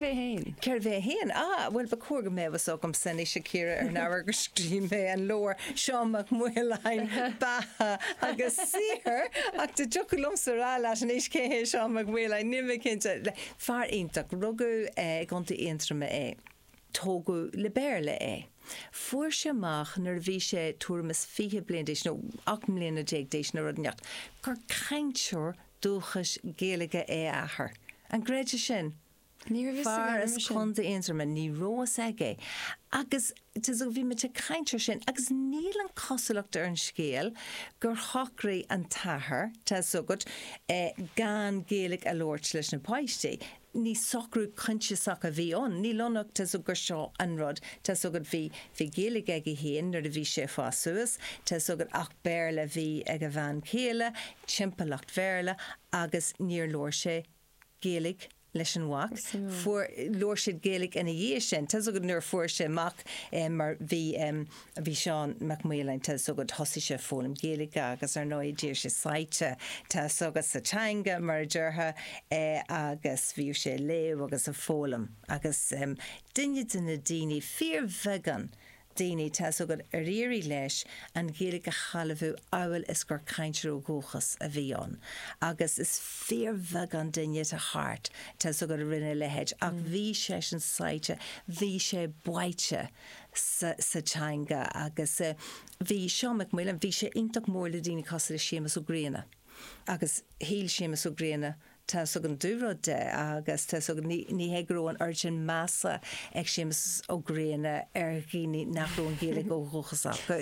é féin. Cérbh é féin? Á, bhuel, ba chóir go mbeadh a fhios agamsa anois, a Chiara, ar an ábhar gur scríobh mé an leabhar Seán Mac Maoláin, Beatha agus Saothar, ach dá dtiocfadh liomsa a rá leat anois cé hé Seán Mac Maoláin, níl mé cinnte. Fear iontach. Rugadh i gContae Aontroma é. Tógadh le Béarla é. Fuair sé amach nuair a bhí sé tuairim is fiche bliain d'aois, nó ocht mbliana déag d'aois nó rud inteacht, gur cainteoir dúchais Gaeilge é a athair. An gcreidfeá sin? Fear as Contae Aontroma, ní raibh a fhios aige agus tá 's agat bhí muid ag caint ar sin agus níl ann, cosúlacht ar an scéal gur shocraigh an t-athair, tá 's agat, gan Gaeilge a labhairt leis na páistí. Ní socrú coinsiasach a bhí ann, níl ann ach, tá 's agat, gur seo an rud, tá 's agat, bhí, bhí Gaeilge aige féin nuair a bhí sé ag fás suas, tá 's agat, ach Béarla a bhí ag a bhean chéile, timpeallacht Bhéarla agus níor labhair sé Gaeilge leis an mhac. Fuair, labhair siad Gaeilge ina dhiaidh sin. Tá 's agat nuair a fuair sé amach mar bhí, bhí Seán Mac Maoláin, tá 's agat thosaigh sé ag foghlaim Gaeilge agus ar ndóigh d'éirigh sé sáite, tá 's agat sa teanga mar a déarfá agus bhíodh sé ag léamh agus ag foghlaim agus duine de na daoine, fíorbheagán daoine, tá fhios agat, ar éirigh leis an Ghaeilge a shealbhú amhail is gur cainteoir ó dhúchas a bhí ann agus is fíorbheagán duine atá thart, tá fhios agat, a rinne a leithéid ach bhí seisean sáite, bhí sé báite sa teanga agus bhí Seán Mac Maoláin, bhí sé iontach mór le daoine cosúil le Séamus Ó Grianna agus shíl Séamus Ó Grianna Tá 's agat an dúrud de agus tá 's agat, ní hé go raibh an oiread sin measa ag Séamus Ó Grianna ar dhaoine nach raibh an Ghaeilge ó dhúchas acu.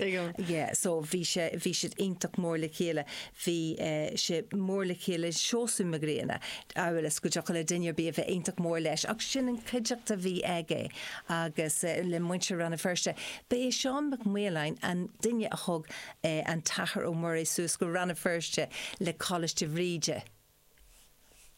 Yeah, so bhí sé, bhí siad iontach mór le chéile. Bhí eh, sé mór le chéile Seosamh Mac Grianna, a mhéad is go dtiocfadh le duine ar bith a bheith iontach mór leis ach sin an chuideachta a bhí aige agus eh, le muintir Rann na Feirste. Ba é Seán Mac Maoláin an duine a thug eh, an tAthair Ó Muirí suas go Rann na Feirste le Coláiste Bhríde.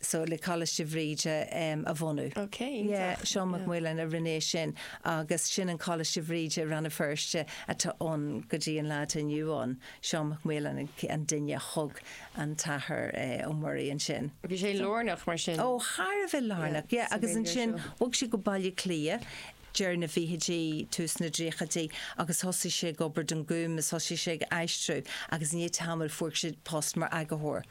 so le Coláiste Bhríde a bhunú. Ok, iontach. Seán Mac Maoláin a rinne é sin agus sin an Coláiste Bhríde, Rann na Feirste, atá ann go dtí an lá atá inniu ann. Seán Mac Maoláin an duine a thug an tAthair Ó Muirí ansin. Bhí sé lárnach mar sin. Ó, thar a bheith lárnach, yeah. Agus ansin bhog sé go Baile Átha Cliath deireadh na bhfichidí, tús na dtríochaidí agus thosaigh sé ag obair don Gúm is thosaigh sé ag aistriú agus i ndiaidh tamaill fuair sé post mar eagarthóir.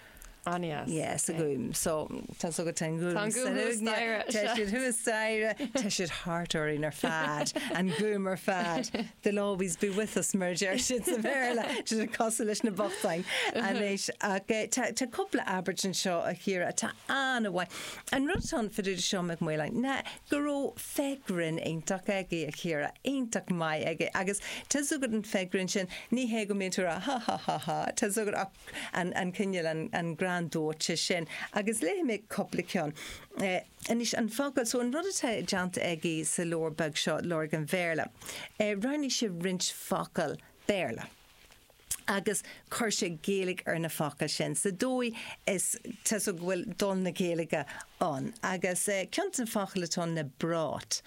Aneas. Yes, a Gúm. So, tá's agat an Gúm. Tá an Gúm thuas staighre. Tá siad thuas staighre. Tá siad thart orainn ar fad. An Gúm ar fad. They'll always be with us mar a deir siad sa Bhéarla. Iad ag casadh leis na bochtáin anois. Ach tá tá cúpla abairt anseo a Chiara atá an-mhaith. An rud fá dtaobh den duine seo Mac Maoláin ná go raibh féith ghrinn iontach aige a Chiara. Iontach maith aige. Agus tá's agat an fhéith ghrinn sin ní hé go mbíonn tú ag rá ha ha ha ha tá's agat ach an cineál, an greann dóite sin agus léifidh mé cúpla ceann. Anois, an focal, so an rud atá déanta aige sa leabhar beag seo, Lorg an Bhéarla, roghnaigh sé roinnt focal Béarla agus chuir sé Gaeilge ar na focail sin sa dóigh is, tá's agat go bhfuil dul na Gaeilge ann. Agus ceann de na focail atá ann ná brought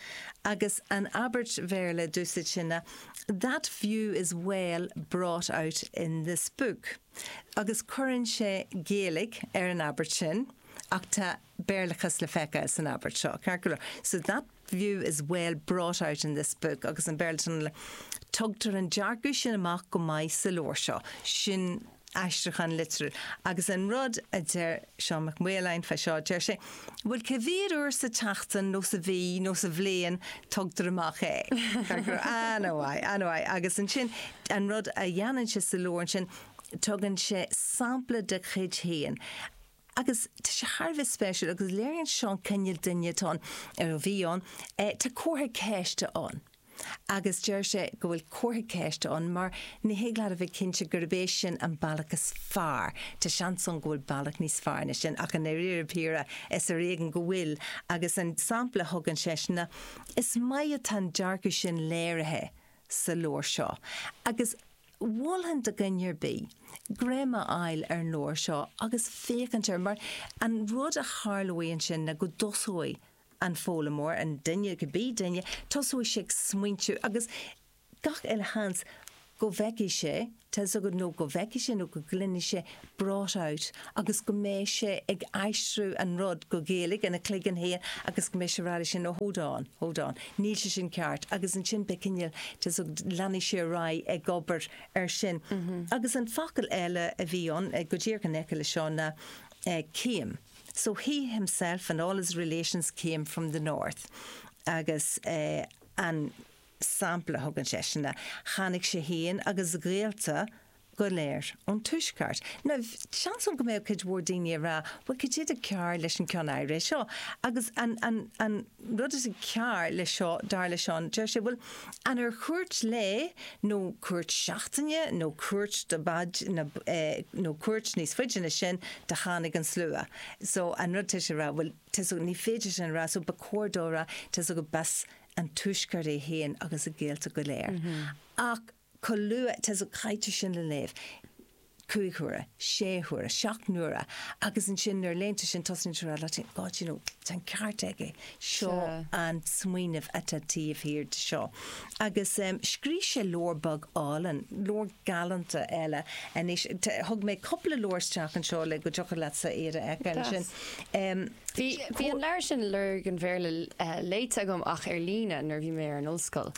agus an abairt Bhéarla a d'úsáid sé ná That view is well brought out in this book agus cuireann sé Gaeilge ar an abairt sin ach tá Béarlachas le feiceáil san abairt seo, ceart go leor. So that view is well brought out in this book agus an Béarlachas ná Tugtar an dearcadh sin amach go maith sa leabhar seo. Sin. aistriúchán litriúil. Agus an rud a deir Seán Mac Maoláin fá seo, deir sé, bhuel, cé mhéad uair sa tseachtain nó sa mhí nó sa bhliain a thugtar amach é? Anyway, anyway, agus ansin, an rud a dhéanann sé sa leabhar ansin, tugann sé sampla de chuid féin. agus tá sé thar a bheith spéisiúil agus léiríonn seo an cineál duine atá ann, nó a bhí ann, tá comhartha ceiste ann agus deir sé go bhfuil comhartha ceiste ann mar ní thig leat a bheith cinnte gurb é sin an bealach is fearr, tá seans ann go bhfuil bealach níos fearr ná sin ach i ndairíre píre is ar éigean go bhfuil agus an sampla a thugann seisean ná, is maith atá an dearcadh sin léirithe sa leabhar seo agus. Mholfainn do dhuine ar bith greim a fháil ar an leabhar seo agus féacháil air, mar an rud a tharlóidh ansin ná go dtosóidh an foghlaimeoir, an duine, cibé duine, tosóidh sé ag smaointiú agus gach uile sheans go bhfeicfidh sé, tá's agat, nó go bhfeicfidh sé nó go gcluinfidh sé brought out agus go mbeidh sé ag aistriú an rud go Gaeilge ina chloigeann féin agus go mbeidh sé ag rá ansin, oh hold on, hold on, níl sé sin ceart agus ansin beidh cineál de so leanfaidh sé ar aghaidh ag obair ar sin. Agus an focal eile a bhí ann, go díreach in aice leis seo, ná came so he himself and all his relations came from the North agus an sampla a thugann seisean ná tháinig sé féin agus a ghaolta go léir ón Tuaisceart. Now, seans ann go mbeadh cuid mhór daoine ag rá, bhuel, cad é tá cearr leis an cheann áirithe seo? Agus an, an, an rud is cearr leis seo, dar le Seán, deir sé, bhuel, an ar cuairt lae nó cuairt seachtaine nó cuairt do b'fhaide ná, eh, nó cuairt níos faide ná sin do tháinig an slua? So, an rud tá sé a rá, bhuel, tá's agat, ní féidir sin a rá, so ba chóir dó a rá, tá's agat, b'as an Tuaisceart é féin agus a ghaolta go léir. Ach. chomh luath is a chaitear sin le léamh, cúig huaire, sé huaire, seacht n-uaire, agus ansin nuair a léann tú sin tosnaíonn tú a rá leat féin, God you know, tá an ceart aige, seo an smaoineamh atá taobh thiar de seo. Agus scrígh sé leabhar beag álainn, leabhar galánta eile anois, thug mé cúpla leabhar isteach anseo le go dtiocfadh leatsa iad a fheiceáil ansin. Bhí an leabhar sin, Lorg an Bhéarla, léite agam ach ar líne nuair a bhí mé ar an ollscoil.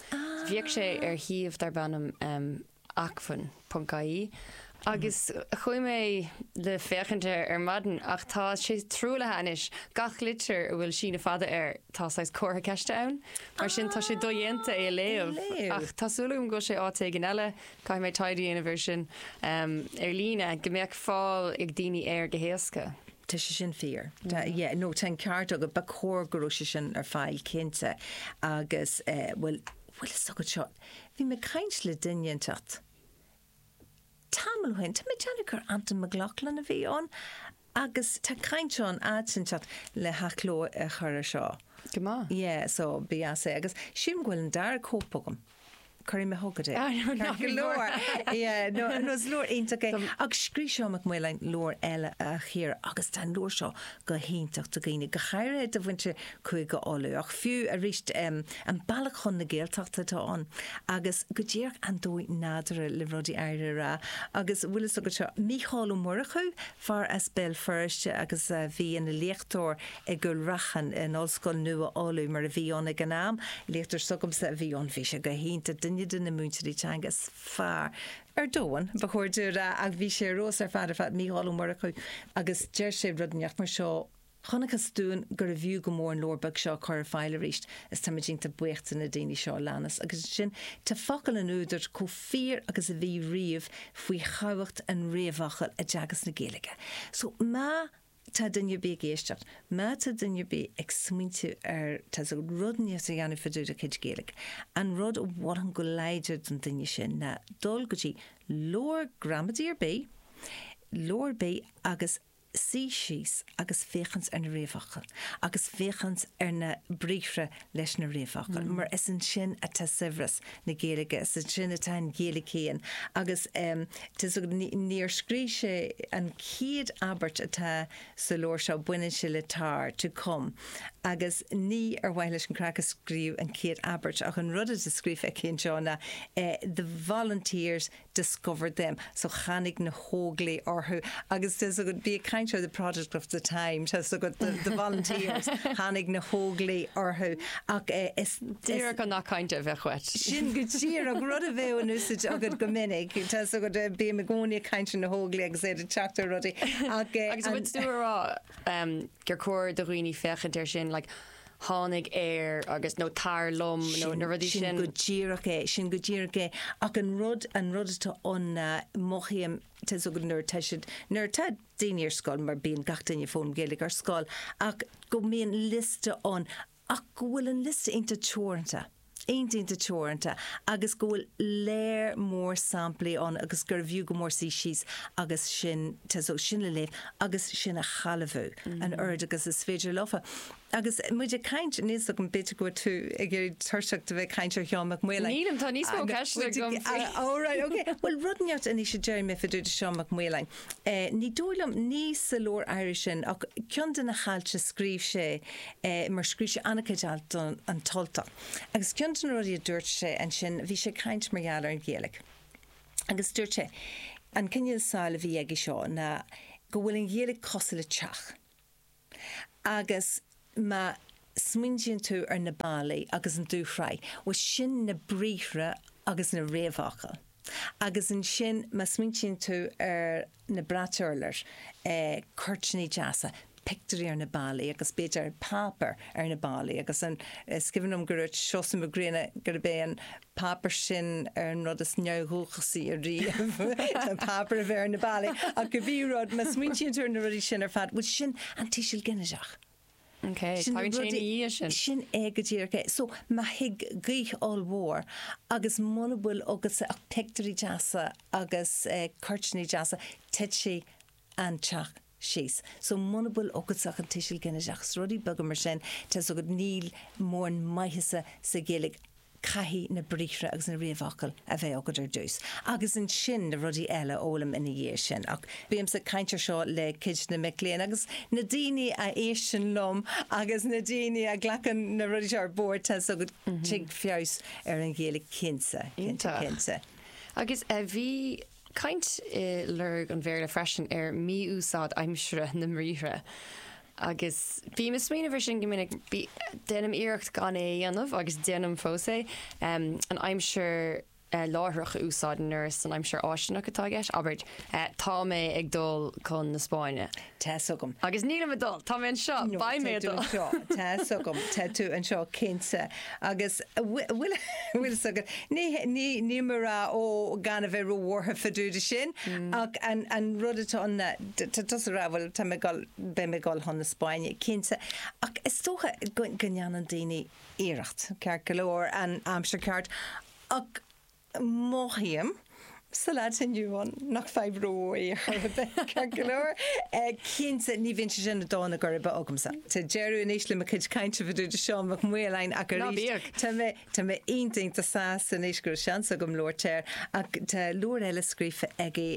Bhíodh sé ar shuíomh darb ainm Acmhainn, ponc-IE agus chuaigh mé le féachaint air ar maidin ach tá sé truaillithe anois. Gach litir a bhfuil síneadh fada air, tá saghas comhartha ceiste ann. Mar sin tá sé dodhéanta é a léamh. Ach tá súil agam go bhfuil sé áit éigin eile, caithfidh mé taighde a dhéanamh air sin ar líne, go mbeadh fáil ag daoine air go héasca. Tá sé sin fíor. Tá, yeah, nó tá an ceart agat, ba chóir go raibh sé sin ar fáil cinnte agus, eh, bhuel, bhuel is dócha seo, bhí mé ag caint le duine inteacht tamall ó shin, tá mé ag déanamh gur Antain Mac Lochlainn a bhí ann agus tá caint ann in áit inteacht le hathchló a chur ar seo. Go maith. Yeah, so, b'fhiú é. Agus sílim go bhfuil an dara cóip agam. Cuirfidh mé chugat é. Tá go leor. Nó is leabhar iontach é. Agus scríobh Seán Mac Maoláin leabhar eile a Chiara agus tá an leabhar seo go hiontach do dhaoine, go háirithe do mhuintir Chúige Uladh. Ach fiú arís, an bealach chun na Gaeltachta atá ann agus go díreach an dóigh nádúrtha le rudaí áirithe a rá. Agus bhfuil fhios agat seo, Mícheál Ó Murchú, fear as Béal Feirste agus a bhí ina léachtóir i gCúil Raithin, in Ollscoil Nua Uladh, mar a bhí ann ag an am. Léachtóir s'agamsa a bhí ann. Bhí sé go hiontach, duine de na múinteoirí teanga is fearr ar domhan, ba chóir domh a rá, ach bhí sé ar fheabhas ar fad ar fad, Mícheál Ó Murchú, agus deir sé rud inteacht mar seo, 'Chonacthas dúinn gurbh fhiú go mór an leabhar beag seo a chur ar fáil arís is táimid iontach buíoch de na daoine seo a leanas'. Agus ansin tá focail an údair chomh fíor agus a bhí riamh faoi thábhacht an réamhfhocail i dteagasc na Gaeilge. So má. tá duine ar bith ag éisteacht, má tá duine ar bith ag smaointiú ar, tá's agat rud inteacht a dhéanamh fá dtaobh dá chuid Gaeilge, an rud a mholfainn go láidir don duine sin ná dul go dtí leabhar gramadaí ar bith, leabhar ar bith agus suí síos agus féachaint ar na réamhfhocla agus féachaint ar na briathra leis na réamhfhocail, mar is ansin atá saibhreas na Gaeilge, is ansin atá an Ghaeilge féin agus níor scríobh sé an chéad abairt atá sa leabhar seo, baineann sé le tar, to come, agus ní ar mhaithe leis an gcraic a scríobhadh an chéad abairt ach an rud atá scríofa aici anseo ná the volunteers discovered them, so tháinig na hÓglaigh orthu agus tá a fhios agat ba é kind of the product of the time, tá a fhios agat the the volunteers, tháinig na hÓglaigh orthu ach eh is Díreach an that kind of a choit. sin go díreach rud a bheadh in úsáid agat go minic, tá a fhios agat eh bím i gcónaí ag caint ar na hÓglaigh agus iad ag teacht ar rudaí ach eh Agus an rud tú a rá em gur cóir do dhaoine féachaint air sin like tháinig ar agus, nó tar liom nó na rudaí sin. Sin go díreach é, sin go díreach é. Ach an rud, an rud atá ann ná, mothaím, tá so nuair atá siad, nuair atá daoine ar scoil, mar bíonn gach duine ag foghlaim Gaeilge ar scoil, ach go mbíonn liosta ann ach go bhfuil an liosta iontach teoranta. iontach teoranta agus go bhfuil lear mór samplaí ann agus gurbh fhiú go mór suí síos agus sin sin a léamh agus sin a shealbhú an oiread agus is féidir leofa. Agus muid ag caint níos so an bit go bhfuil tú ag éirí tuirseach de bheith caint ar Sheán Mac Maoláin. Nílim tá níos mó ceiste go. Bhfuil rud ar bith le rá faoi dtaobh de Seán Mac Maoláin. Ní dóigh liom, ní sa leabhar áirithe sin, ach ceann de na hailt a scríobh sé, mar scríobh sé an-chuid alt do An tUltach, agus ceann de na rudaí a dúirt sé ansin, bhí sé ag caint mar gheall ar an Ghaeilge, agus dúirt sé, an cineál samhail a bhí aige seo ná go bhfuil an Ghaeilge cosúil le teach. Agus má smaoiníonn tú ar na ballaí agus an dúshraith, bhuel sin na briathra agus na réamhfhocail. Agus ansin má smaoiníonn tú ar na bratacha urláir, cuirtíní deasa, pictiúirí ar na ballaí agus b'fhéidir páipéar ar na ballaí agus an, is cuimhin liom go dúirt Seosamh Mac Grianna gurb é an páipéar sin ar an rud is neamhdhúchasaí ariamh, an páipéar a bheith ar na ballaí, ach cibé rud, má smaointíonn tú ar na rudaí sin ar fad, bhuel sin an tuiseal ginideach. Ok, tagann sé ina dhiaidh sin. Sin é go díreach é. So, má thig gaoth ollmhór agus muna bhfuil agatsa ach pictiúirí deasa agus cuirtíní deasa, titfidh an teach. síos. So muna bhfuil agatsa ach an tuiseal ginideach, is rudaí beaga mar sin, tá a fhios agat, níl mórán maitheasa sa Ghaeilge, caithfidh na briathra agus na réamhfhocail a bheith agat ar dtús agus ansin na rudaí eile a fhoghlaim ina dhiaidh sin. Ach bímse ag caint ar seo le cuid de na mic léinn agus na daoine a éisteann liom agus na daoine a ghlacann na rudaí seo ar bord, tá a fhios agat, tig feabhas ar an Ghaeilge cinnte, cinnte, cinnte. Iontach. Agus a bhí. caint i Lorg an Bhéarla freisin ar mhí-úsáid aimsire na mbriathra agus bím ag smaoineamh air sin go minic. Déanaim iarracht gan é a dhéanamh agus déanaim fós é, an aimsir láithreach a úsáid nuair is an aimsir fháistineach atá i gceist, abair, tá mé ag dul chun na Spáinne. Tá's agam. Agus nílim ag dul. Tá mé anseo. Beidh mé ag dul. No, tá tú anseo. Tá's agam. Tá tú anseo, cinnte. Agus bhfuil, bhfuil fhios agat, ní, ní, níl mé ag rá, Ó, gan a bheith róbhuartha fá dtaobh de sin, ach an, an rud atá ann, tá tusa ag rá, bhuel, tá mé ag dul, beidh mé ag dul chun na Spáinne, cinnte. Ach is dócha go, go ndéanann daoine iarracht, ceart go leor, an aimsir ceart, ach Mothaím sa lá atá inniu ann nach fadhb rómhór í chor ar bith, ceart go leor. Cinnte, ní bhíonn sé sin i dtólamh go ceart agamsa. Tá deireadh anois le mo chuid cainte fá dtaobh de Seán Mac Maoláin ach arís, tá mé iontach sásta anois go raibh seans agam labhairt air ach tá leabhar eile scríofa aige,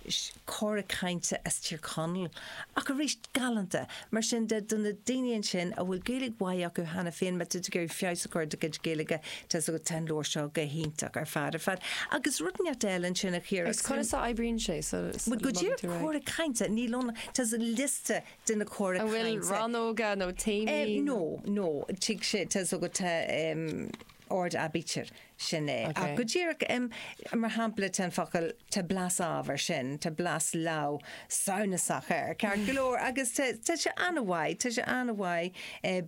Is Cora Cainte as Tír Chonaill, ach arís galánta. Mar sin de, do na daoine ansin a bhfuil Gaeilge mhaith acu cheana féin, má tá tú ag iarraidh feabhas a chur ar do chuid Gaeilge, tá's agat, tá an leabhar seo go hiontach ar fad ar fad. Agus rud neart eile ansin a Chiara, Agus agus conas a oibríonn sé sula Bhuel, go dtí ar dtí cora cainte, níl ann ach, tá's, liosta de na cora An bhfuil cainte. rannóga nó téamaí? Em, nó, nó, tig sé, tá's agat, tá em, ord aibítir. Sin é. Ach go díreach, mar shampla, tá an focal, tá blas ábhar, sin, tá blas leamh samhnasach air, ceart go leor, agus tá sé an-mhaith, tá sé an-mhaith,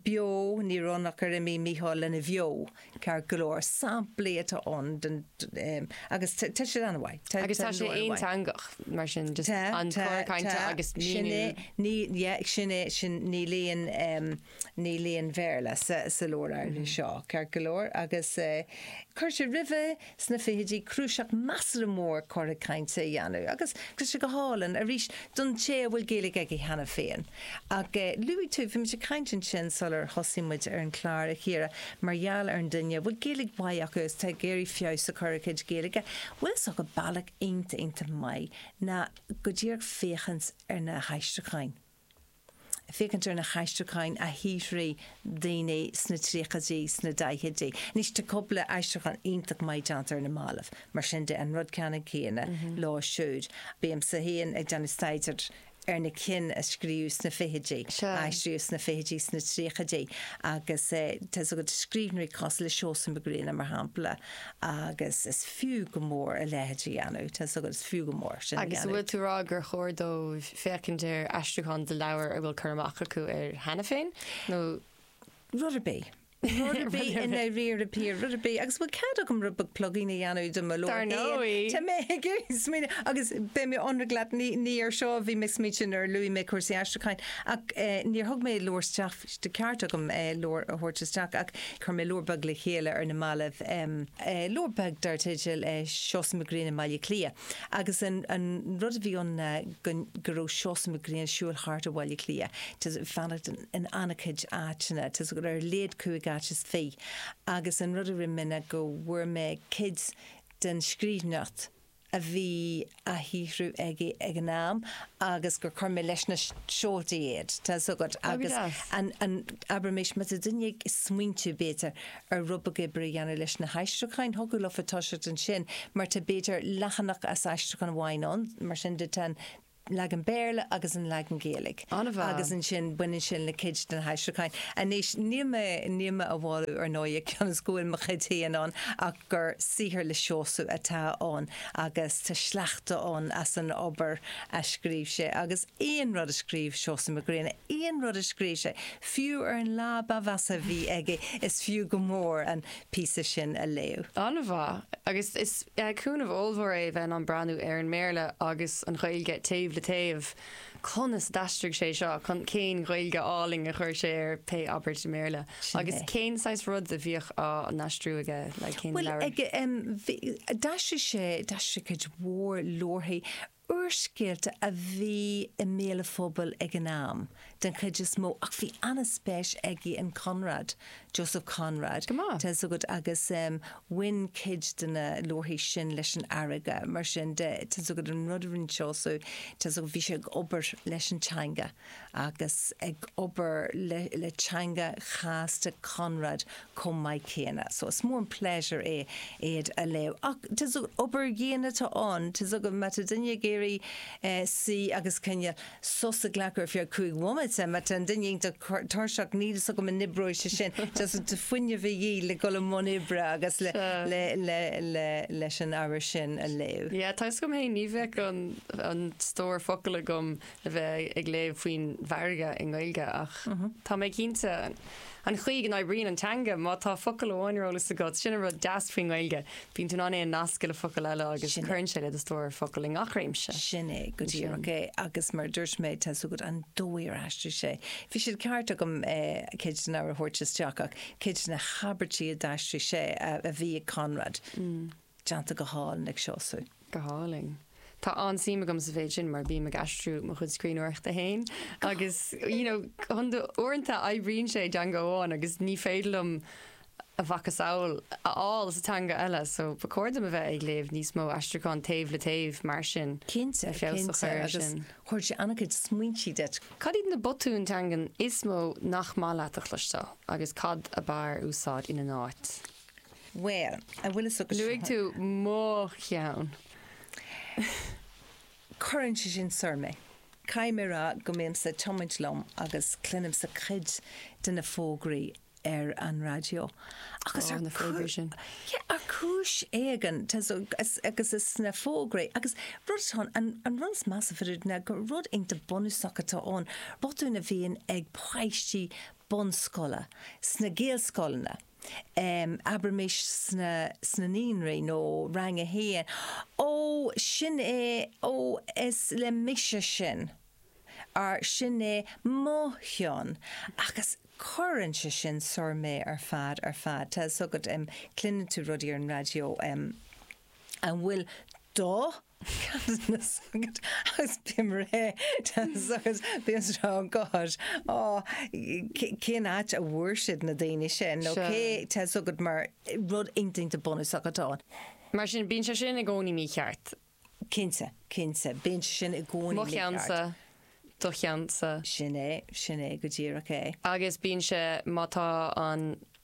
beo, ní raibh ach gur imigh Micheál lena bheo, ceart go leor, samplaí atá ann den, agus tá siad an-mhaith. Agus tá sé aonteangach, mar sin, just an cor cainte agus míniú. Sin é, ní, yeah, sin é, sin, níl aon. Níl aon Bhéarla sa leabhar áirithe seo, ceart go leor, agus chuir sé roimhe sna fichidí cnuasach measartha mór cora cainte a dhéanamh, agus tá sé go hálainn, arís, don té a bhfuil Gaeilge aige cheana féin. Ach luaigh tú, bhí muid ag caint ansin sular thosaigh muid ar an chlár, a Chiara, mar gheall ar an duine a bhfuil Gaeilge mhaith acu agus atá ag iarraidh feabhas a chur ar a chuid Gaeilge. Bhuel, is dócha bealach iontach, iontach maith ná go díreach féachaint ar na haistriúcháin. féachaint ar na haistriúcháin a shaothraigh daoine sna tríochaidí, sna daichidí. Anois, tá cúpla aistriúchán iontach maith déanta ar na mallaibh, mar sin de, an rud ceannann céanna leo siúd. Bímse féin ag déanamh staidéir ar na cinn a scríobhadh sna fichidí, a aistríodh sna fichidí, sna tríochaidí, agus tá's agat, scríbhneoirí cosúil le Seosamh Mac Grianna, mar shampla, Agus is fiú go mór a leithéid a dhéanamh, tá 's agat, is fiú go mór sin a dhéanamh. Agus an bhfuil tú a rá gur chóir dóibh féachaint ar aistriúcháin de leabhair a bhfuil cur amach acu air cheana féin, nó.? Rud ar bith. Rud ar bith i ndáiríre, Pia, rud ar bith. Agus bhfuil cead agam rud beag plugála a dhéanamh de mo leabhar féin? Dar ndóigh. Tá mé ag smaoineamh, agus beidh mé ionraic leat, ní ar seo a bhí mé ag smaoineamh nuair a luaigh mé cúrsaí aistriúcháin, ach níor thug mé an leabhar isteach Ba cheart dom leabhar a thabhairt isteach ach chuir mé leabhar beag le chéile ar na mallaibh, leabhar beag dar teideal Seosamh Mac Grianna i mBaile Cliath. Agus an rud a bhí ann ná go raibh Seosamh Mac Grianna ag siúl thart i mBaile Átha Cliath, ag fanacht in an-chuid áiteanna, ar a laghad cúig áit is fiche. Agus an rud a rinne mé ná go bhfuair mé cuid den scríbhneoireacht, a bhí á shaothrú aige ag an am agus gur chuir mé leis na seoltaí iad, tá a fhios agat, agus an, abraimis, má tá duine ag smaointiú, b'fhéidir, ar rud beag oibre a dhéanamh leis na haistriúcháin, thiocfadh leofa toiseacht ansin mar tá, b'fhéidir, leathanach as aistriúchán amháin ann, mar sin de, tá an. leagan Béarla agus an leagan Gaeilge. Ana mhaith. Agus ansin baineann sin le cuid de na haistriúcháin. Anois, níl mé, níl mé á mholadh ar ndóigh cionn is go bhfuil mo chuid féin ann ach gur saothar le Seosamh atá ann agus tá sleachta ann as an obair a scríobh sé agus aon rud a scríobh Seosamh Mac Grianna, aon rud a scríobh sé, fiú ar an lá ba mheasa a bhí aige, is fiú go mór an. píosa sin a léamh. An-mhaith. Agus is cúnamh ollmhór é a bheith in ann breathnú ar an mBéarla agus an Ghaeilge taobh le taobh. Conas a d'aistrigh sé seo? Cén Ghaeilge álainn a chuir sé ar pé abairt i mBéarla? Agus cén saghas rud a bhíodh á n-aistriú aige? Bhuel, d'aistrigh sé, d'aistrigh sé cuid mhór leabharthaí. úrscéalta a bhí i mbéal an phobail ag an am, den chuid is mó, ach bhí an-speis aige in Conrad, Joseph Conrad, tá a fhios agat agus bhain cuid de na leabharthaí sin leis an fharraige, mar sin de, tá a fhios agat, an rud a rinne Seosamh, tá a fhios agat, bhí sé ag obair leis an teanga. agus ag obair le teanga chasta Chonrad chomh maith céanna. So is mór an pléisiúr é iad a léamh. Ach is obair dhian atá ann. Tá fhios agat, má tá duine ag iarraidh suí agus cineál sos a ghlacadh ar feadh cúig bhomaite, má tá duine iontach tuirseach, níl fhios agam an oibreoidh sé sin. Tá fuinneamh de dhíth le dhul i mbun oibre agus leis an ábhar sin a léamh. Yeah, tá fhios agam fhéin, ní bheadh an stór focal agam le bheith ag léamh faoin bhfarraige i nGaeilge ach tá mé cinnte an chaoi go n-oibríonn an teanga, má tá focal amháin ar eolas agat, sin an rud deas faoin nGaeilge, bíonn tú in ann é a nascadh le focal eile agus cuireann sé le do stór focal i ngach réimse. Sin é go díreach é agus mar dúirt mé tá a fhios agat an dóigh ar aistrigh sé. Bhí siad ceart agam cuid den abhar a thabhairt isteach ach cuid de na habairtí a d'aistrigh sé a bhí ag Conrad. Déanta go hálainn ag Seosamh. Go hálainn. Tá an-suim agam sa mhéid sin mar bím ag aistriú mo chuid scríbhneoireachta fhéin agus you know uaireanta oibríonn sé i dteanga amháin agus ní féidir liom a mhacasamhail a fháil sa teanga eile so ba chóir dom a bheith ag léamh níos mó aistriúchán taobh le taobh mar sin. Cinnte, cinnte agus spreagann sé an-chuid smaointí duit. Cad iad na botúin teangan is mó nach maith leat a chloisteáil agus cad ab fhearr úsáid ina n-áit? Bhuel, an bhfuil a fhios agat. Luaigh tú mo cheann. Cuireann sé sin soir mé. Caithfidh mé a rá go mbímse ag tiomáint liom agus cluinimse cuid de na fógraí ar an raidió agus ar ar chúis éigin agus is sna fógraí agus rud atá ann, an rud is measa faoi dtaobh de ná gur rud iontach bunúsach atá ann, botúin a bhíonn ag páistí bunscoile sna Gaelscoileanna. abraimis sna naíonraí nó Rang a hAon, Ó, sin é, ó, is le mise sin, or sin é mo cheann, agus cuireann sé sin soir mé ar fad, ar fad. Tá a fhios agat, cluineann tú rudaí ar an raidió an bhfuil do. Cheannsa agat agus bim réidh teannas agus bíonn seo an gcáis. Á, cén áit a bhfuair siad na daoine sin nó cé tá a fhios agat mar rud iontach bunúsach atá ann. Mar sin, bíonn sé sin i gcónaí mícheart. Cinnte, cinnte, bíonn sé sin i gcónaí mícheart. Mo cheannsa, do cheannsa. Sin é, sin é, go díreach é. Agus bíonn sé, má tá an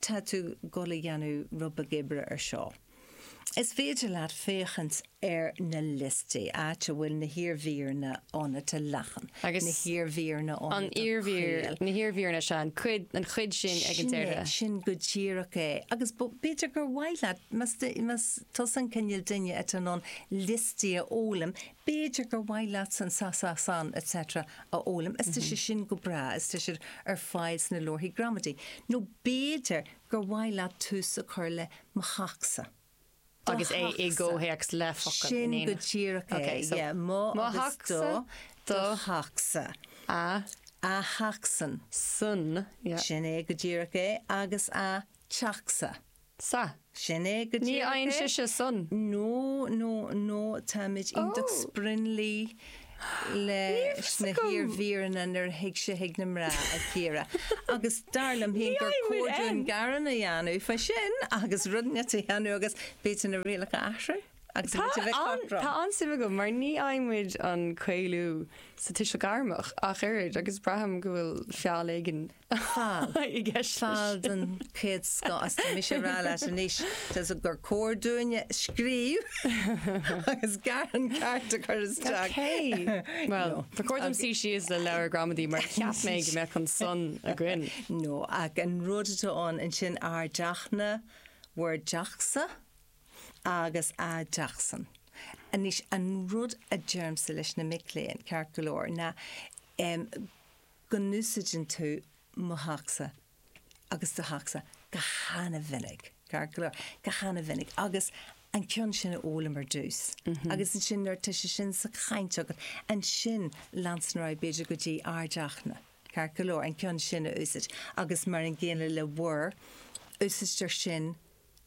Tá tú ag dul a dhéanamh roinnt bheag oibre ar seo. Is féidir leat féachaint ar na liostaí, áit a bhfuil na hiarmhíreanna ann atá leathan, na hiarmhíreanna ann atá caol. Na hiarmhíreanna, sea, an chuid, an chuid sin ag an deireadh. Sin é, sin go díreach é. Agus b'fhéidir gur mhaith leat, más tusa an cineál duine atá in ann liostaí a fhoghlaim, b'fhéidir gur mhaith leat san sa sa san etc a fhoghlaim is tá sé sin go breá is tá siad ar fáil sna leabharthaí gramadaí nó b'fhéidir gur mhaith leat tús a chur le mo theachsa, do theachsa, Agus é i gcomhthéacs le focail in éineacht. sin go díreach é, Okay, so, yeah, mo agus do, mo theachsa, do theachsa, a theachsan, san, yeah. sin é go díreach é, agus a teachsa. Sin é go díreach é. No, no, no, táimid iontach sprionlaithe leis na hiarmhíreanna nuair a thig sé chuig na mná, a Chiara. Agus dar liom féin gur cóir dúinn gearán a dhéanamh faoi sin agus rud inteacht a dhéanamh agus b'fhéidir na rialacha a athrú. agus muid a bheith cothrom. Tá an-suim agam mar ní fhaigheann muid an caolú sa Tuiseal Gairmeach ach oiread agus braithim go bhfuil feall éigin i gceist leis. Feall den chéad scoth. Is tá mise ag rá leat anois gur cóir dúinn scríobh agus gearán ceart a chur isteach. Ok. Bhuel, ba chóir dom suí síos le leabhar gramadaí mar cheap mé go mbeadh an -san againn. No, ach an rud atá ann ansin, ár dteach-na, bhur dteachsa? agus a dteachsan. Anois, an rud a deirimse leis na mic léinn, ceart go leor, na em go n-úsaideann tú mo theachsa agus do theachsa go hana-mhinic, ceart go leor, go hana-mhinic agus an ceann sin a fhoghlaim ar dtús agus ansin nuair atá sé sin sa chaint agat, ansin leanstan ar aghaidh b'fhéidir go dtí ár dteach-na, ceart go leor, an ceann sin a úsaid agus mar an gcéanna le bhur úsaidtear sin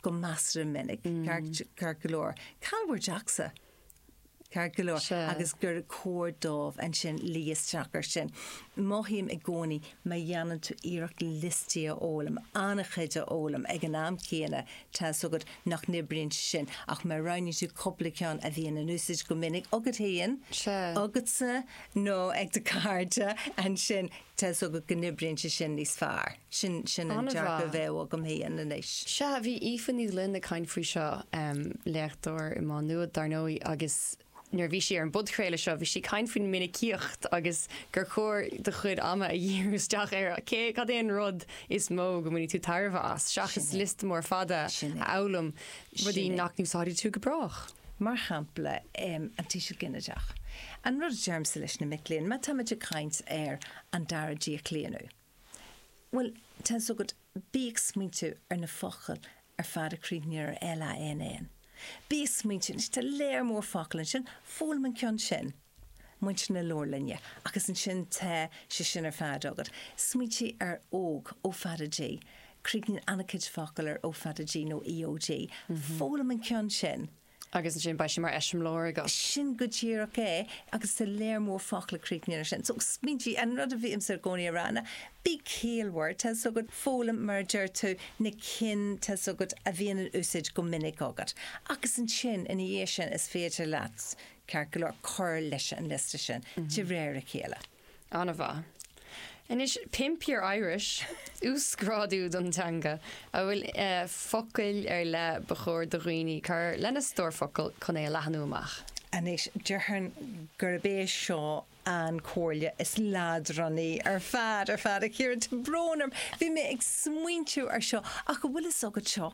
go measartha minic, ceart go leor, cá bhfuil bhur dteachsa, ceart go leor, agus gur cóir dóibh ansin luí isteach air sin. Mothaím i gcónaí má dhéanann tú iarracht liostaí a fhoghlaim, an-chuid a fhoghlaim ag an am céanna, tá fhios agat nach n-oibríonn sé sin, ach má roghnaíonn tú cúpla ceann a bhíonn in úsaid go minic agat féin, agatsa nó ag do cairde, ansin Tá's agat go n-oibríonn sé sin níos fearr. Sin, sin an dearcadh a bheadh agam féin anois. Sea, bhí Aoife Ní Ghloinn ag caint faoi seo, léachtóir i Má Nuad, dar ndóigh, agus nuair a bhí sí ar an bpodchraoladh seo, bhí sí ag caint faoin minicíocht agus gur chóir do chuid ama a dhíriú isteach ar cé, cad é an rud is mó go mbainfidh tú tairbhe as, seachas liosta mór fada a fhoghlaim. rudaí nach n-úsáidfidh tú go brách. mar shampla, an tuiseal ginideach, an rud a deirimse leis na mic léinn, má táimid ag caint ar an dara díochlaonadh, bhuel, tá fhios agat, bí ag smaointiú ar na focail ar fad a chríochnaíonn ar LANN. Bí ag smaointiú, anois tá lear mór focal ansin, foghlaim an ceann sin. muintir na leabharlainne agus ansin tá sé sin ar fad agat. Smaointigh ar óg, ó fada g. Críochnaíonn an-chuid focal ar ó fada g nó EOG. Foghlaim an ceann sin. Agus ansin beidh sé mar eiseamláir agat. Sin go díreach é agus tá lear mór focal a chríochnaíonn ar sin. So, smaointigh, an rud a bhímse i gcónaí a rá ná bí ciallmhar, tá's agat, foghlaim, mar a deir tú, na cinn, tá's agat, a bhíonn in úsáid go minic agat. Agus ansin, ina dhiaidh sin, is féidir leat. Ceart go leor cur leis an liosta sin de réir a chéile. An-mhaith. Anois, Pimp your Irish, uasghrádú don teanga an bhfuil focail ar leith ba chóir do dhaoine cur lena stór focal chun é a leathnú amach. Anois, déarfainn gurb é seo an comhairle is leadránaí ar fad, ar fad, a Chiara. Tá brón orm, bhí mé ag smaointiú ar seo ach an bhfuil fhios agat seo.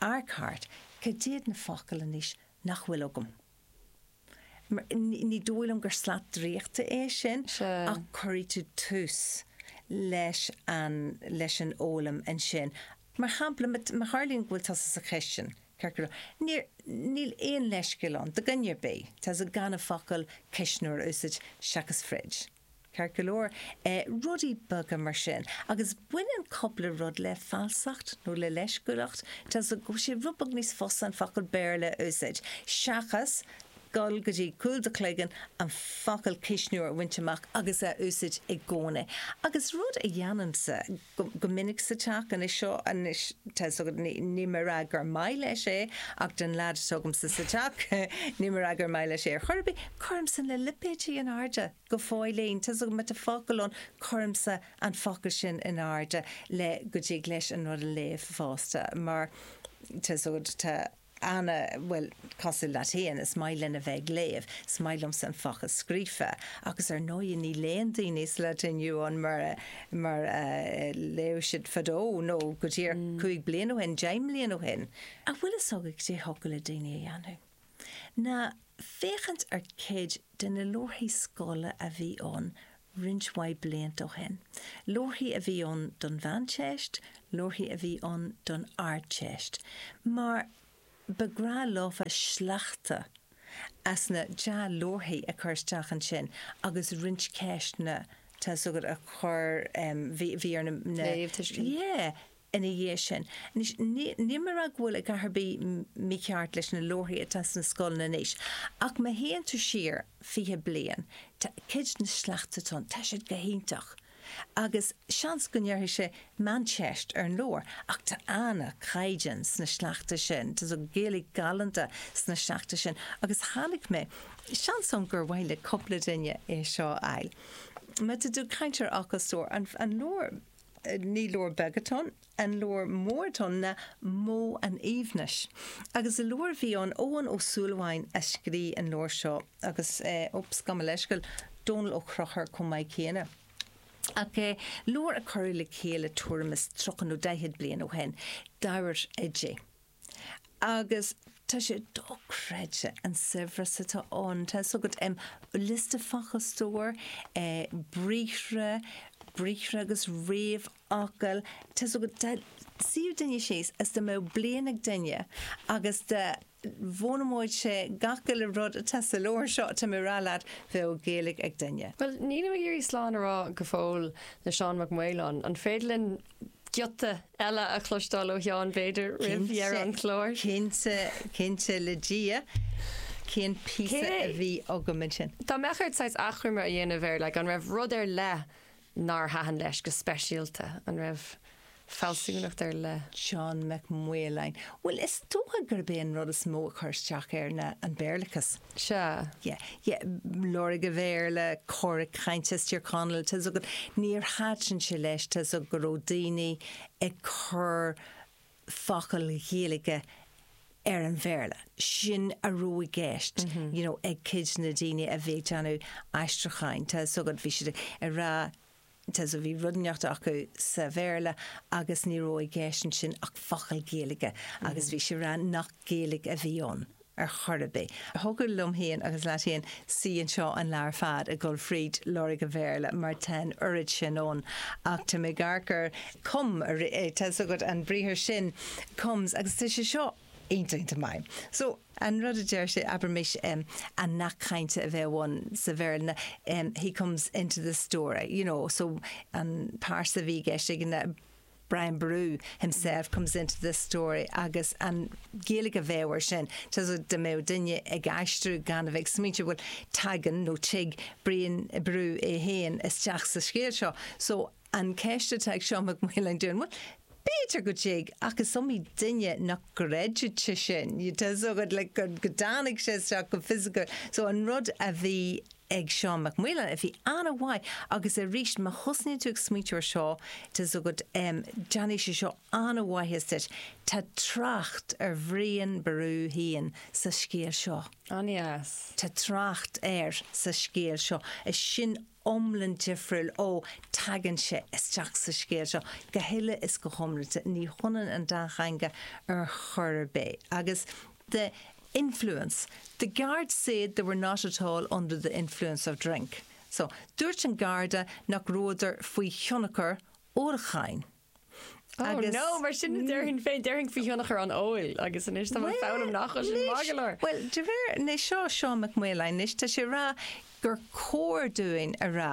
Amharc thart, cad iad na focail anois nach bhfuil agam? Mar ní dóigh liom gur slat draíochta é sin ach cuirfidh tú tús leis an leis an fhoghlaim ansin. Mar shampla, ma má tharlaíonn go bhfuil tusa sa chistin, ceart go leor, níor níl aon leithscéal ann, do dhuine ar bith, tusa gan an focal 'cuisneoir' a úsáid seachas 'fridge'. Ceart go leor, rudaí beaga mar sin. Agus baineann cupla rud le falsacht nó le leisciúlacht, tá sé rud beag níos fusa an focal Béarla a úsáid, seachas dul go dtí cúl do chloigeann, an focal cuisneoir a bhaint amach agus a úsáid i gcónaí. Agus rud a dhéanaimse, go go minic sa teach anois seo anois tá's agat níl mé ag rá gur maith leis é ach don lead atá agamsa sa teach níl mé ag rá gur maith leis é ar chor ar bith cuirimse na lipéidí in airde go fóillín tá's agat má tá focal ann cuirimse an focal sin in airde le go dtig leis an rud a léamh fosta mar tá's agat tá Anna, Bhuel, cosúil leat fhéin, is maith linn a bheith ag léamh, is maith liomsa an focal scríofa agus ar ndóigh ní léann daoine sa lá atá inniu ann mar a, mar a léadh siad fadó nó go díreach cúig bliana ó shin, deich mbliana ó shin. An bhfuil fhios agat cad é a thiocfadh le daoine a dhéanamh? Ná féachaint ar cuid de na leabharthaí scoile a bhí ann roinnt mhaith blianta ó shin. Leabharthaí a bhí ann don Mheánteist, leabharthaí a bhí ann don Ardteist, mar ba ghnách leofa sleachta as na dea-leabharthaí a chur isteach ansin agus roinnt ceisteanna, tá's agat, a chur, bhí ar na, Léamhthuiscint. yeah. ina dhiaidh sin. Anois, níl mé ag rá go bhfuil a dhath ar bith mícheart leis na leabharthaí atá sna scoileanna anois, ach má théann tú siar fiche bliain, tá cuid de na sleachta atá ann, tá siad go hiontach. Agus seans go ndéarfaidh sé meánteist ar an leabhar, ach tá an-chaighdeán sna sleachta sin, tá Gaeilge galánta sna sleachta sin, agus tháinig mé, seans ann gur mhaith le cupla duine é seo a fháil, má tá tú ag caint ar fhocal stór, an leabhar. Ní leabhar beag atá ann, an leabhar mór atá ann ná Modh an Aoibhnis. Agus leabhar a bhí ann, Eoghan Ó Súilleabháin a scrígh an leabhar seo, agus, oops, gabh mo leithscéal, Dónall Ó Conchúir chomh maith céanna. Ach leabhar a cuireadh le chéile tuairim is tríocha nó daichead bliain ó shin, d'éirigh di. agus tá sé dochreidte an saibhreas atá ann. Tá fhios agat, em, liosta focal, stór, eh, briathra, briathra agus réamhfhocail, tá fhios agat, dá suífeadh duine síos is dá mbeadh bliain ag duine agus dá bhfoghlaimeodh sé gach uile rud atá sa leabhar seo, tá mé a' rá leat, bheadh Gaeilg ag duine. Bhuel, nílim ag iarraidh slán a rá go fóill le Seán Mac Maoláin, an féidir linn giota eile a chloisteáil ó Sheán, b'fhéidir, roimh dheireadh an chláir. Cinnte, cinnte le Dia. Cén píosa a bhí agam ansin? Dá mbeadh ort saghas achoimre a dhéanamh ar, like, an raibh rud ar leith nár thaitin leis go speisialta? An raibh fealsúnacht ar leith? Seán Mac Maoláin, Bhuel, is dócha gurb é an rud is mó a chuir isteach air ná an Béarlachas. sea. yeah, yeah, Lorg an Bhéarla, Cora Cainte as Tír Chonaill, tá a fhios agat, níor thaitin sé leis, tá a fhios agat, go raibh daoine ag cur focail Ghaeilge ar an Bhéarla. Sin a raibh i gceist, you know, ag cuid de na daoine a bhí ag déanamh aistriúcháin, tá a fhios agat, bhí siad ag rá, Sea, bhí rud inteacht acu sa Bhéarla agus ní raibh i gceist ansin ach focal Gaeilge agus bhí sé ag rá nach Gaeilge a bhí ann ar chor ar bith. Thiocfadh liom féin agus leat féin suí anseo an lá ar fad ag dul fríd lorg an Bhéarla mar tá an oiread sin ann ach tá mé ag amharc ar 'come', tá 'fhios agat, an briathar sin 'comes' agus tá sé seo iontach, iontach maith. An rud a deir sé, abraimis, an nath cainte a bheadh ann sa Bhéarla ná he comes into the story, you know, so an pearsa a bhí i gceist aige ná Brian Boru himself comes into the story agus an Ghaeilge a bheadh air sin, dá mbeadh duine ag aistriú gan a bheith ag smaointiú, bhuel, tagann nó tig Brian Boru é féin isteach sa scéal seo. So. An cheist atá ag Seán Mac Maoláin dúinn, bhuel, b'fhéidir go dtig, ach is iomaí duine nach gcreidfeadh sin, tá 's agat, like, go dtáinig sé isteach go fisiciúil. So an rud a bhí ag Seán Mac Maoláin a bhí an-mhaith, agus aríst, má thosnaíonn tú ag smaointiú ar seo, tá 's agat, em, déanfaidh sé seo an-mhaitheas duit, tá trácht ar Bhrian Ború fhéin sa scéal seo. An-deas. Tá trácht air sa scéal seo. Is sin iomlan difriúil ó teagann sé isteach sa scéal seo, go huile is go hiomlanta. Ní hionann an dá theanga ar chor ar bith agus. the influence, the guard said they were not at all under the influence of drink'. So, Dúirt an Garda nach rabhadar faoi thionchar ólacháin. Agus... Ó no, mar sin a déarfainn féin, déarfainn faoi thionchar an óil agus anois tá mé ag foghlaim nach bhfuil sin maith go leor. Bhuel, de réir, anois seo Seán Mac Maoláin, anois tá sé ag rá gur cóir dúinn a rá,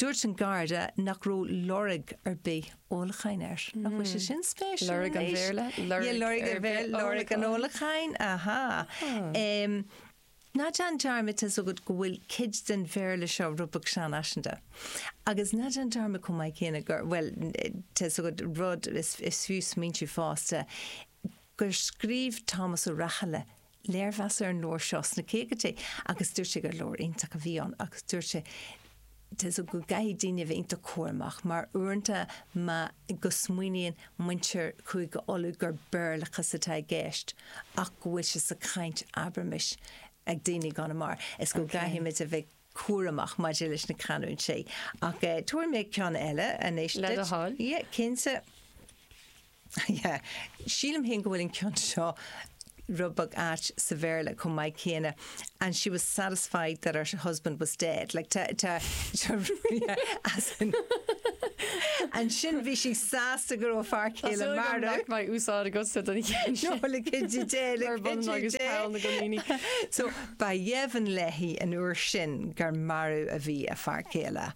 dúirt an Garda nach raibh lorg ar bith ólacháin air. Nach bhfuil sé sin spéisiúil anois? Lorg an Bhéarla, lorg ar bith ólacháin. Lorg an ólacháin, ahá. Ná déan dearmad, tá a fhios agat go bhfuil cuid den Bhéarla seo rud beag seanfhaiseanta. Agus ná déan dearmad chomh maith céanna gur, bhuel, tá a fhios agat rud is fiú smaointiú fosta, gur scríobh Tomás Ó Rathaille léirmheas ar an leabhar seo sna caogaidí agus dúirt sé gur leabhar iontach a bhí ann agus dúirt sé, Tá a fhios agat go gcaithfidh daoine a bheith iontach cúramach mar uaireanta má, go smaoiníonn muintir Chúige Uladh gur Béarlachas atá i gceist ach go bhfuil sé sa chaint, abraimis, ag daoine i gConamara. Is go gcaithfidh muid a bheith cúramach maidir leis na canúintí. Ach tabharfaidh mé ceann eile anois duit. Le do thoil. Yeah, cinnte. Yeah. Sílim féin go bhfuil an ceann seo rud beag ait sa Bhéarla chomh maith céanna, and she was satisfied that her husband was dead. Like tá, tá, tá yeah, as in ansin bhí sí sásta go raibh a fear céile marbh. Tá súil agam nach mbeidh úsáid agatsa den cheann sin. No, like could you dare, like could you dare. Ar bun agus peann na gcoiníní. So ba dheimhin léi an uair sin gur marbh a bhí a fear céile.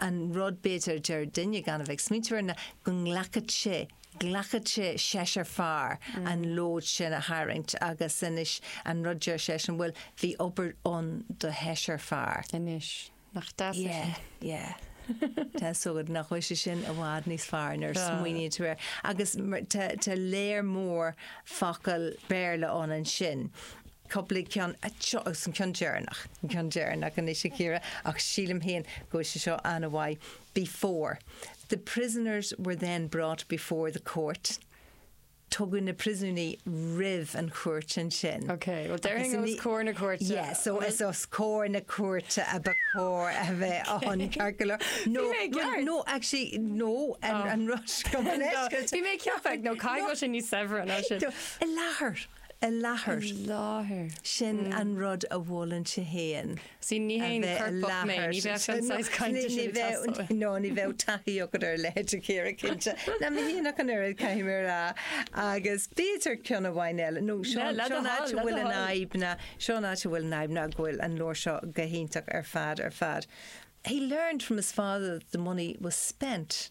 an rud, b'fhéidir, deir duine gan a bheith ag smaointiú air ná go nglacfadh sé, ghlacfadh sé seisear fear an lód sin a tharraingt agus anois an rud deir seisean, bhuel, bhí obair ann do sheisear fear. Anois, nach deas é sin? Yeah, yeah. Tá a fhios agat, nach bhfuil sé sin i bhfad níos fearr nuair a smaoiníonn tú air. Agus tá léar mór focal Béarla ann ansin. Cúpla ceann anseo agus an ceann deireanach. An ceann deireanach anois, a Chiara, ach sílim féin go bhfuil sé seo an-mhaith. Before, The prisoners were then brought before the court, tugadh na priosúnaigh roimh an chúirt ansin. Ok, well déarfainn os comhair na cúirte. Yeah, so is os comhair na cúirte ba chóir a bheith ann, Cearcalar. No, Bhí mé ag ceart. no, actually, no, an rud seo go leisce. Bhí mé ag ceapadh, nó caithfidh go bhfuil sé níos saibhre ná sin. I láthair. I láthair. I láthair. Sin an rud a mholann sé féin. Sea, ní haon choirpeach mé, ní bheadh an saghas cainte sin ag teastáil uaim. No, ní bheadh taithí agat ar a leithéid a Chiara, cinnte. Na, ní hea ach an oiread, caithfidh mé a rá. Agus b'fhéidir ceann amháin eile, nó seo an áit a bhfuil an fhadhb ná, seo an áit a bhfuil an fhadhb ná go bhfuil an leabhar seo go hiontach ar fad, ar fad. He learned from his father that the money was spent.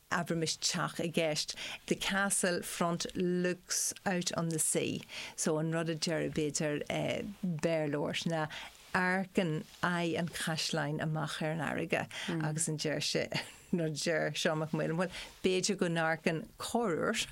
abraimis teach i gceist, the castle front looks out on the sea so an rud a deir b'fhéidir Béarlóir ná amharcann aghaidh an chaisleáin amach ar an fharraige agus ansin deir sé, nó deir Seán Mac Maoláin, bhuel, b'fhéidir go n-amharcann corruair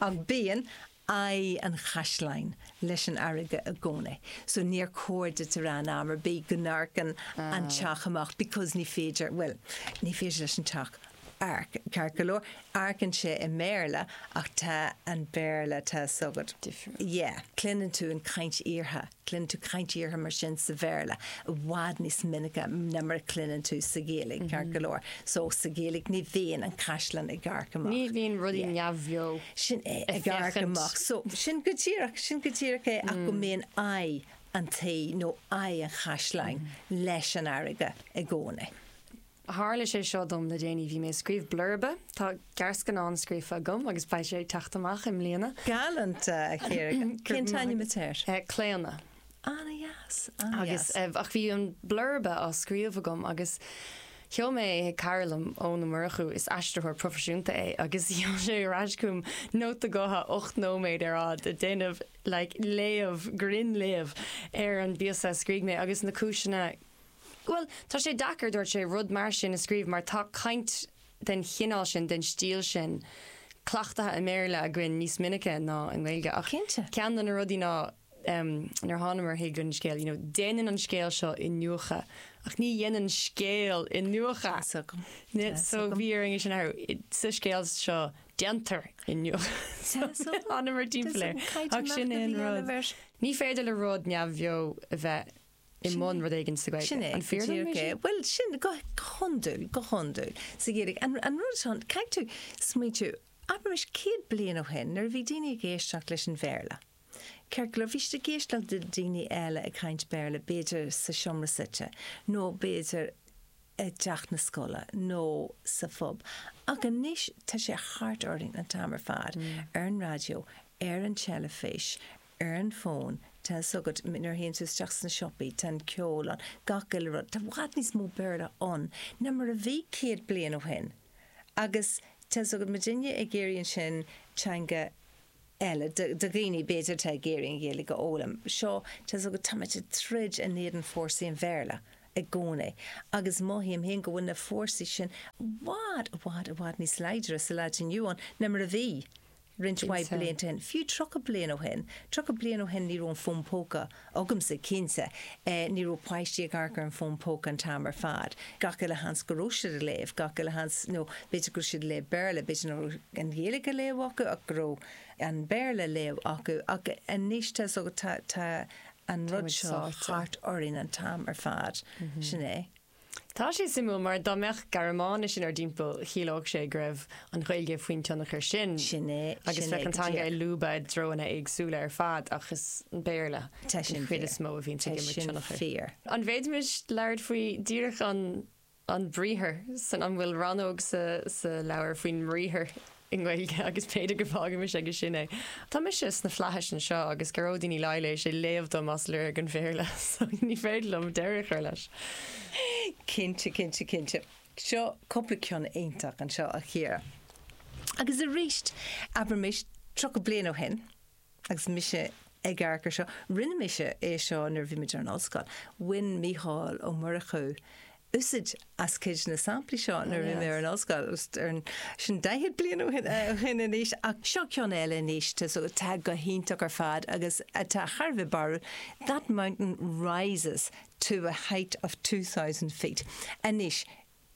ach bíonn aghaidh an chaisleáin leis an fharraige i gcónaí. So níor chóir duit a rá in am ar bith go n-amharcann an teach amach because ní féidir, bhuel, ní féidir leis an teach amharc, ceart go leor, amharcann sé i mBéarla ach tá an Béarla, tá a 's agat, yeah, cluineann tú an chaint fhíortha. Cluineann tú caint fhíortha mar sin sa Bhéarla i bhfad níos minice ná mar a cluineann tú sa Ghaeilge, ceart go leor. So, sa Ghaeilge ní bhíonn an caisleán ag amharc amach. Ní bhíonn rudaí Yeah. neamhbheo Sin é, ag amharc féachaint. amach. So, sin go díreach, sin go díreach é ach go mbíonn aghaidh an tí nó aghaidh an chaisleáin leis an fharraige i gcónaí. Tharla sé seo dom le déanaí, bhí mé ag scríobh blurba, tá gearrscannán scríofa agam agus beidh sé ag teacht amach i mbliana. Galánta, a chara. Cén t-ainm atá air? Claonadh. Ana dheas, ana dheas. Agus, ach bhí an blurba á scríobh agam agus sheol mé é chuig cara liom, Eoin Ó Murchú, is aistritheoir proifisiúnta é, agus sheol sé ar ais chugam nóta gutha ocht nóiméad ar fad ag déanamh like léamh, grinn-léamh ar an bpíosa a scrígh mé agus na cúiseanna, Bhuel, tá sé deacair, dúirt sé, rud mar sin a scríobh mar tá caint den chineál sin, den stíl sin, cleachtaithe i mBéarla againn níos minice ná i nGaeilge. Ach ceann de na rudaí ná, nuair a thánamar chuig an scéal, you know, déanann an scéal seo iniúchadh ach ní dhéanann scéal iniúchadh. So bhí orainn é sin a athrú. Sa scéal seo, déantar iniúchadh. So thánamar timpeall air. Ach sin é an rud. Ní féidir le rud neamhbheo a bheith. i mbun rud éigin sa Ghaeilge. Sin é. An fíor dom é sin? Bhuel, sin, go hiondúil, go hiondúil. Sa Ghaeilge. An, an rud atá, caithfidh tú smaointiú, abraimis céad bliain ó shin, nuair a bhí daoine ag éisteacht leis an Bhéarla, ceart go leor, bhí siad ag éisteacht le daoine eile ag caint Béarla, b'fhéidir sa seomra suí, nó b'fhéidir i dteach na scoile, nó sa phub. Ach anois, tá sé thart orainn an t-am ar fad, ar an raidió, ar an teilifís, ar an bhfón, tá 's agat, nuair a théann tú isteach sna siopaí, tá an ceol ann, gach uile rud, tá i bhfad níos mó Béarla ann ná mar a bhí céad bliain ó shin agus tá 's agat, má tá duine ag iarraidh ansin teanga eile, do dhaoine, b'fhéidir, atá ag iarraidh an Ghaeilge a fhoghlaim, seo, tá 's agat, táimid ag troid in éadan fórsaí an Bhéarla i gcónaí agus mothaím féin go bhfuil na fórsaí sin i bhfad, i bhfad, i bhfad níos láidre sa lá atá inniu ann ná mar a bhí. roinnt mhaith blianta ó shin, fiú tríocha bliain ó shin, tríocha bliain ó shin ní raibh an fón póca agamsa, cinnte, ní raibh páistí ag amharc ar an bhfón póca an t-am ar fad, gach uile sheans go raibh siad ag léamh, gach uile sheans, nó b'fhéidir go raibh siad ag léamh Béarla, b'fhéidir nach raibh an Ghaeilge á léamh acu ach go raibh an Béarla á léamh acu, ach anois tá an rud seo thart orainn an t-am ar fad, sin é. Tá sé suimiúil mar dá mbeadh Gearmáinis in ár dtimpeall, chiallódh sé go raibh an Ghaeilge faoin tionchar sin. Sin é, sin é go díreach. Agus bheadh an teanga ag lúbadh i dtreonna éagsúla ar fad ach is an Béarla den chuid is mó a bhíonns ag imirt tionchair. Tá sin fíor. An bhféadfaimis labhairt faoi díreach an briathar san, an bhfuil rannóg sa leabhar faoin mbriathar? i nGaeilge agus b'fhéidir go bhfágaimis aige sin é. Tá mise sna Flaithis anseo agus Gearóidín Ní Laighléis ag léamh dom as Lorg an Bhéarla so ní féidir liom deireadh a chur leis. Cinnte, cinnte, cinnte. Seo cúpla ceann iontach anseo, a Chiara. Agus arís, abraimis, 30 bliain ó shin, agus mise ag earcú seo, rinne mise é seo nuair a bhí mé ar an ollscoil, bhain Mícheál Ó Murchú úsaid as cuid de na samplaí seo nuair a bhí mé ar an ollscoil, sin daichead bliain ó shin anois, ach seo ceann eile anois atá go hiontach ar fad agus atá thar a bheith barúil, That mountain rises to a height of two thousand feet. Anois,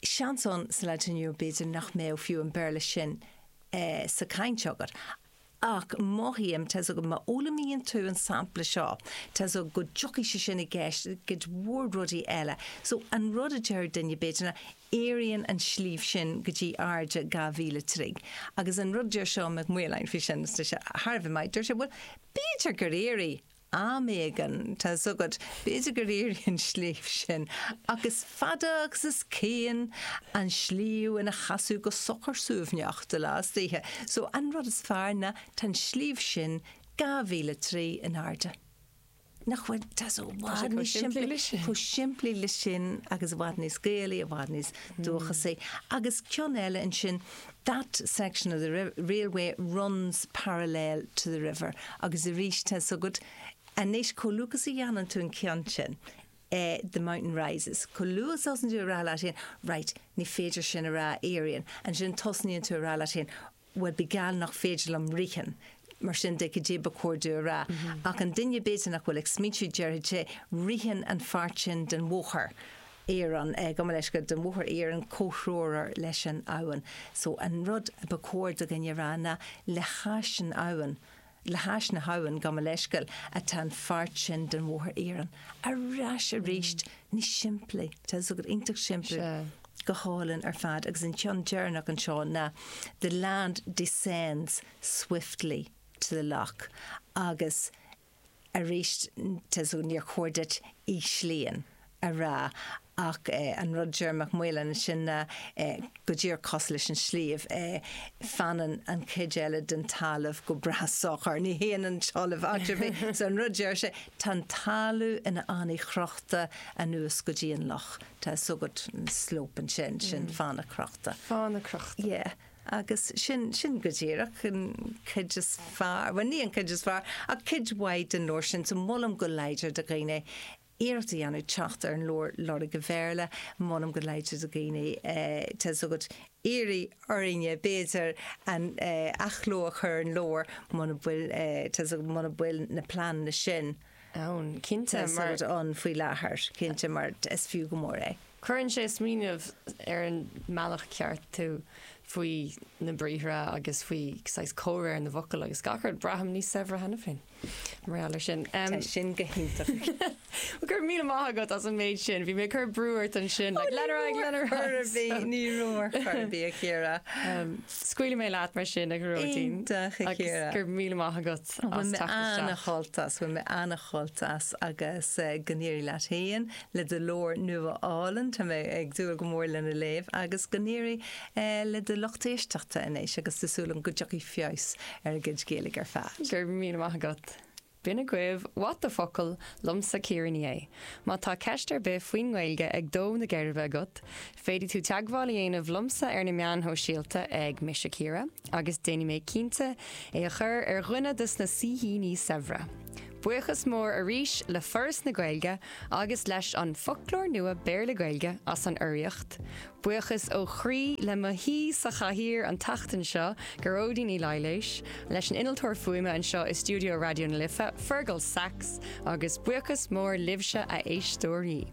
seans ann sa lá atá inniu, b'fhéidir, nach mbeadh fiú an Béarla sin sa chaint agat. Ach mothaím, tá a fhios agat, má fhoghlaimíonn tú an sampla seo, tá a fhios agat, go dtiocfaidh sé sin i gceist i gcuid mhór rudaí eile. So, an rud a déarfadh duine, b'fhéidir, ná, Éiríonn an sliabh sin go dtí airde dhá mhíle troigh. Agus an rud a deir Seán Mac Maoláin faoi sin, is tá sé thar a bheith maith, deir sé, bhuel, b'fhéidir gur éirigh, Am éigin, tá 'fhios agat, b'fhéidir gur éirigh an sliabh sin, ach is fada agus is cian an sliabh ina sheasamh go socair suaimhneach de ló is d'oíche. So, an rud is fearr ná tá an sliabh sin dhá mhíle troigh in airde. Nach bhfuil? Tá sé chomh simplí leis sin agus i bhfad níos Gaelaí, i bhfad níos dúchasaí. Agus ceann eile ansin, That section of the railway runs parallel to the river agus arís tá a fhios agat anois chomh luath is a dhéanann tú an ceann sin eh, the mountain rises chomh luath is a thosaíonn tú ag rá leat féin, right, ní féidir sin a rá éiríonn ansin tosaíonn tú ag rá leat féin bhuel bíodh geall nach féidir liom ritheann Mar sin de, cad é ba chóir duit a rá? Ach an duine, b'fhéidir, nach bhfuil ag smaointiú air, déarfaidh sé, 'Ritheann an pháirt sin den bhóthar iarainn, gabh mo leithscéal, den bhóthar iarainn comhthreomhar leis an abhainn. So an rud ba chóir do dhuine a rá ná 'le hais an abhainn, le hais na habhann, gabh mo leithscéal, atá an pháirt sin den bhóthar iarainn. Ar ais arís, níos simplí. Tá fhios agat, iontach simplí. Go hálainn ar fad. Agus an ceann deireanach anseo ná 'The land descends swiftly to the lock agus arís níor chóir duit ísliú a rá ach an rud deir Mac Maoláin ansin ná go díreach cos leis an sliabh fanann an chuid eile den talamh go breá socair, ní théann an talamh áit ar bith so an rud deir sé tá an talamh ina fhánaí chrochta anuas go dtí an loch tá so agat slope ansin sin fána crochta. fána crochta. Yeah. Agus sin, sin go díreach an cuid is fearr, bhuel ní an cuid is fearr, ach cuid mhaith den leabhar sin. So molaim go láidir do dhaoine iarracht a dhéanamh teacht ar an leabhar, Lorg an Bhéarla. Molaim go láidir do dhaoine, tá a fhios agat, iarraidh orthu, b'fhéidir, athchló a chur ar an leabhar muna bhfuil, tá a fhios agat, muna bhfuil na pleananna sin, ann, cinnte, mar. Tá siad ann faoi láthair, cinnte, mar is fiú go mór é. Cuireann sé ag smaoineamh ar an mbealach ceart tú faoi na briathra agus faoi saghas comhréir na bhfocal agus gach rud. Braithim níos saibhre cheana féin, mar gheall ar sin. Tá sin go hiontach. Go raibh míle maith agat as an méid sin. Bhí mé ag cur brú ort ansin, like, lenar fhag, lenar fhag. Ní raibh a chor ar bith, ní raibh a chor ar bith, a Chiara. Scaoilfidh mé leat mar sin, a Ghearóidín. Iontach, a Chiara. Agus go raibh míle maith agat as teacht isteach. Bhain mé an-sult as, bhain mé an-sult as agus go n-éirí leat féin le do leabhar nua álainn. Tá mé ag dúil go mór lena léamh agus go n-éirí le do lucht éisteachta anois agus tá súil agam go dtiocfaidh feabhas ar a gcuid Gaeilge ar fad. Go raibh míle maith agat. B'in agaibh What the focal! liomsa, Ciara Ní É. Má tá ceist ar bith faoin nGaeilge ag dó na geirbe agat, féadfaidh tú teagmháil a dhéanamh liomsa ar na meáin shóisialta ag Mise Ciara agus déanfaidh mé cinnte é a chur ar dhuine dos na saoithíní saibhre. Buíochas mór arís le Foras na Gaeilge agus leis An Foclóir Nua Béarla-Gaeilge as an urraíocht. Buíochas ó chroí le mo haoi sa chathaoir an tseachtain seo, Gearóidín Uí Laighléis, leis an innealtóir fuaime anseo i stiúideo Raidió na Life, Fergal Sachs, agus buíochas mór libhse a éisteoirí.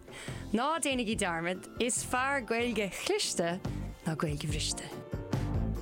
Ná déanaigí dearmad, is fearr Gaeilge chliste ná Gaeilge bhriste!